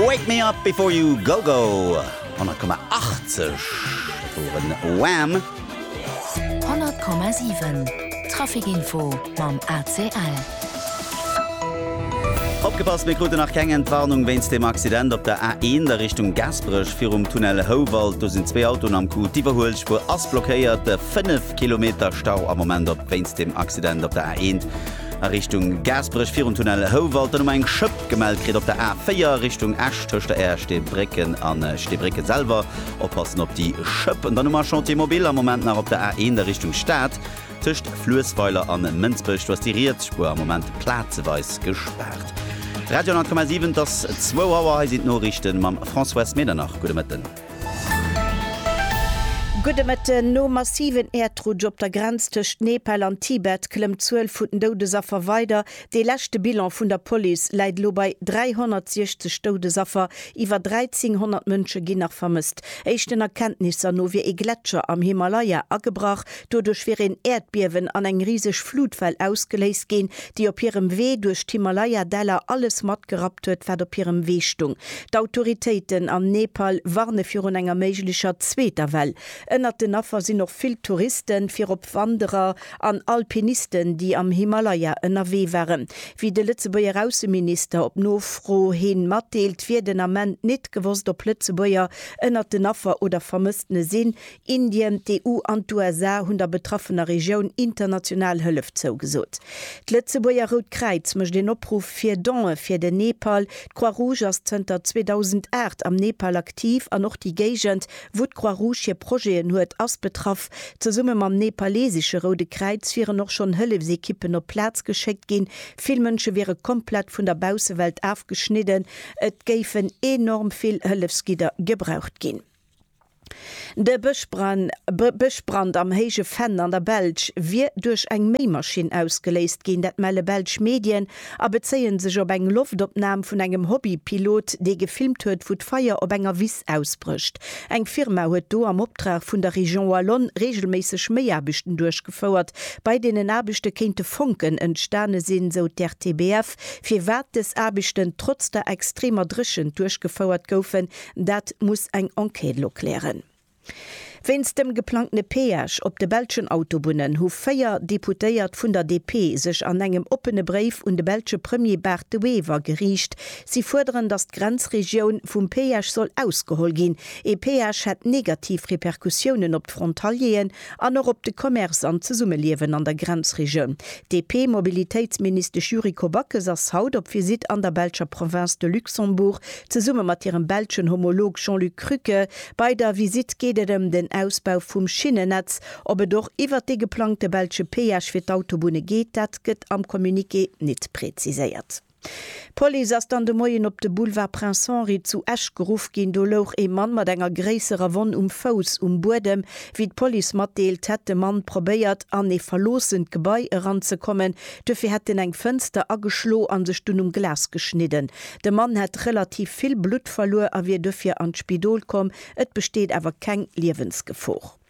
Wake me up before you go go 10,80 woren Wham! 100,7 Trafikinfo mam ACL. Opgepasst, mir kruten nach keng Entwarnung wéinst dem Accident op der A1 a Richtung Gaasperech virum Tunnel Houwald. Do sinn zwee Autoen am Coup. D'Iwwerhuelspuer ass blockéiert. 5 Kilometer Stau am Moment op wéinst dem Accident op der A1. a Richtung Gaasperech virun Tunnel Houwald, dann hu mer eng Schëpp gemellt kritt op der A4 Richtung Esch tëscht der Ersteebrécken an Steebrécken selwer. Oppassen op déi Schëpp. An dann hu mer Chantier mobile am Moment nach op der A1 a Richtung Stad tëscht Fluessweiler an Mënsbech. Do ass déi riets Spuer am Moment plazeweis gespaart. Radio 10,7, et ass 2 Auer, hei sinn d'Noriichte mam François Medernach. Gudde Mëtten. Gudde Mëtten. No massiven Äerdrutsch op der Grenz tëscht Nepal an Tibet klëmmt d'Zuel vun den Doudesaffer weider. Dee leschte Bilan vun der Police läit elo bei 360 Doudesaffer. Iwwer 1.300 Mënsche ginn nach vermësst. Éischten Erkenntnisser no wier ee Gletscher am Himalaya agebrach, Doduerch wier een Äerdbiewen an eng riseg Flutwell ausgeléist ginn, déi op hirem Wee duerch d'Himalaya-Däller alles matgerappt huet, wat op hirem Wee stung. D'Autoritéiten am Nepal warne virun enger méiglecher zweeter Well. Ënnert den Affer sinn och vill Touristen, virop Wanderer an Alpinisten, déi am Himalaya ënnerwee waren. Wéi de Lëtzebuerger Ausseminister op Nofro hin matdeelt, wier den Ament nit gewosst, ob Lëtzebuerger ënnert den Affer oder Vermëssene sinn. Indien, d'EU an d'USA hunn der betraffener Regioun international Hëllef zougesot. D'Lëtzebuerger Rout Kräiz mécht een Opruff fir Donë fir den Nepal. D'Croix-Rouge ass zënter 2008 am Nepal aktiv an och déi Géigend, wou d'Croix-Rouge hir Projeten huet, ass betraff. Zesumme mam nepalesesche Roude Kräiz wieren och schonn Hëllefsekippen op d'Plaz geschéckt ginn. Vill Mënsche wiere komplett vun der Baussewelt afgeschnidden. Et géifen enorm vill Hëllefsgidder gebraucht ginn. De Bëschbrand am Héije Venn an der Belsch wier duerch eng Méimaschinn ausgeléist ginn. Dat melle belsch Medien a bezéie sech op eng Loftopnam vun engem Hobbypilot, dee gefilmt huet, wou d'Feier op enger Wiss ausbrécht. Eng Firma huet do am Optrag vun der Région Wallonne reegelméisseg Méiaarbechten duerchgefouert. Bei deenen Aarbechte kéinte Fonken entstane sinn, sou d'RTBF. Firwat dës Aarbechten trotz der extremer Dréchent duerchgefouert goufen, Dat muss eng Enquête elo klären. Wéinst dem geplangtene Peage op de belschen Autobunnen hu véier Deputéiert vun der DP sech an engem oppene Bréif un de belsche Premier Bart De Wever geriicht. Si fuerderen, datt d'Grenzregioun vum Peage soll ausgeholl ginn. Ee Peage hätt negativ Repercussiounen op d'Frontalieren An och op de Commerce an d'Zesummeliewen an der Grenzregioun. D'DP-Mobilitéitsministesch Yuriko Backes ass haut op Visitt an der belscher Province de Luxembourg, zesumme mat hirem belschen Homolog Jean-Luc Krücke. Bei der Visitt geet et ëm den Ausbau vum Schinnennetz. Ob et och iwwert dee geplangte belsche Péage fir d'Autobunne geet, dat gëtt am Communiqué nit präziséiert. D'Police ass dann de Moien op de Boulevard Prince Henri zu Esch geruff ginn. Do louch ee Mann mat enger gréisserer Wonn um Fouss um Buedem. Wéi d'Police matdeelt, hätt de Mann probéiert, an ee verloossent Gebai eranzekommen. Duerfir hätt en eng Fënster ageschlo a sech dunn um Glas geschnidden. De Mann hätt relativ vill Blutt verluer a wier duerfir an d'Spidol komm. Et besteet awer keng Liewensgefor.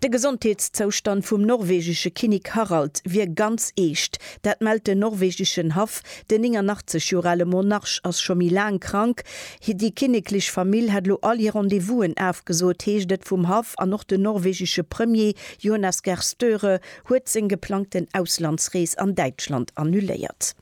De Gesondheetszoustand vum norwegesche Kinnik Harald wier ganz eescht. Dat mellt den norwegeschen Haff. Den 89 Joer ale Monarch ass scho méi laang krank. Déi kinneklech Famill hätt elo all hir Rendez-vousen afgesot, heescht et vum Haff. An och den norwegesche Premier Jonas Gahr Støre huet seng geplangten Auslandsrees an Däitschland annuléiert.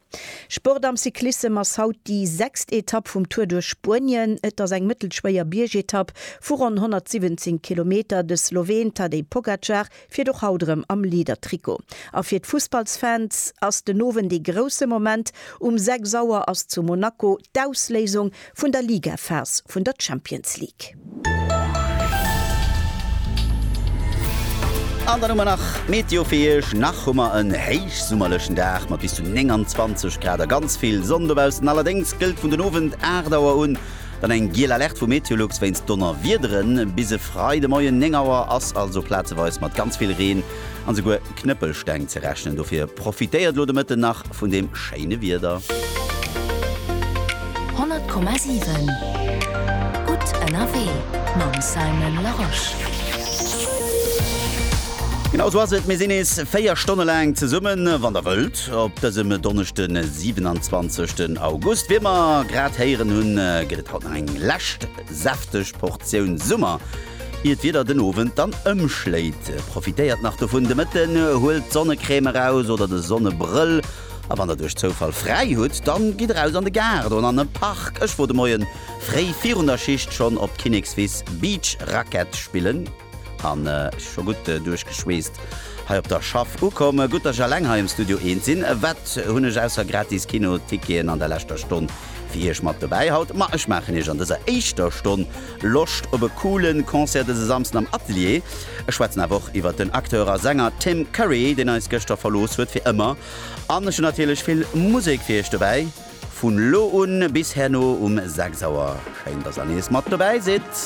Sport am Cyclissem ass haut déi sechst Etapp vum Tour duerch Spuenien. Et ass eng mëttelschwéier Biergetapp vu ronn 117 Kilometer. De Sloween Tadej Pogacar fiert och haut erëm am Leader-Trikot. A fir d'Fussballsfans ass den Owend ee grousse Moment, Um 6 Auer ass zu Monaco d'Ausléisung Vun der Ligaphase vun der Champions League. An dann hu mer nach d'Meteo fir Iech. Nach hu mer en héichsummerlechen Dag mat bis zu 29 Grad a ganz vill Sonn dobaussen. Allerdéngs gëllt vun den Owend 8 Auer un dann eng giel Alerte vu Meteolux wéinst Donnerwiederen. Bis e Freidemoien 9 Auer ass also plazeweis mat ganz vill Reen an esouguer Knëppelsteng ze rechnen. Dofir profitéiert lo de Mëtten nach vun deem schéine Wieder. 100,7 Gutt ënnerwee mam Simon Larosche. Genau sou ass et, mir sinn nees 4 Stonne laang zesummen, wann der wëllt, op dësem Donneschden, 27 den August. Wéi mer grad héieren hunn, gëtt et haut nach eng lescht säfteg Portioun Summer. Ier d'Wieder den Owend dann ëmschléit, profitéiert nach dovun de Mëtten, huelt d'Sonnecrème eraus oder de Sonnebrëll a wann der duerch Zoufall fräi hutt, dann gitt eraus an de Gaart oder an e Park. Ech wor de Moien fréi virun der Schicht schonn op Kinnekswiss Beach Racquet spillen an scho gutt duerchgeschweesst hei op der Schaff ukomm. Gutt dass ech alleng hei am Studio eent sinn, wat hunn ech ausser gratis Kino Ticketen an der leschter Stonn fir Iech mat dobäi haut? Ma ech maachen Iech an dëser éischter Stonn Loscht op e coolen Concert dëse Samsden am Atelier? Ech schwätzen awer och iwwert den Acteur a Sänger Tim Curry, deen eis gëschter verlooss huet fir ëmmer. An ech hunn natierlech vill Musek fir iech dobäi vun elo un bis herno um 6 Auer. Schéin, dass der nees mat dobäi sidd!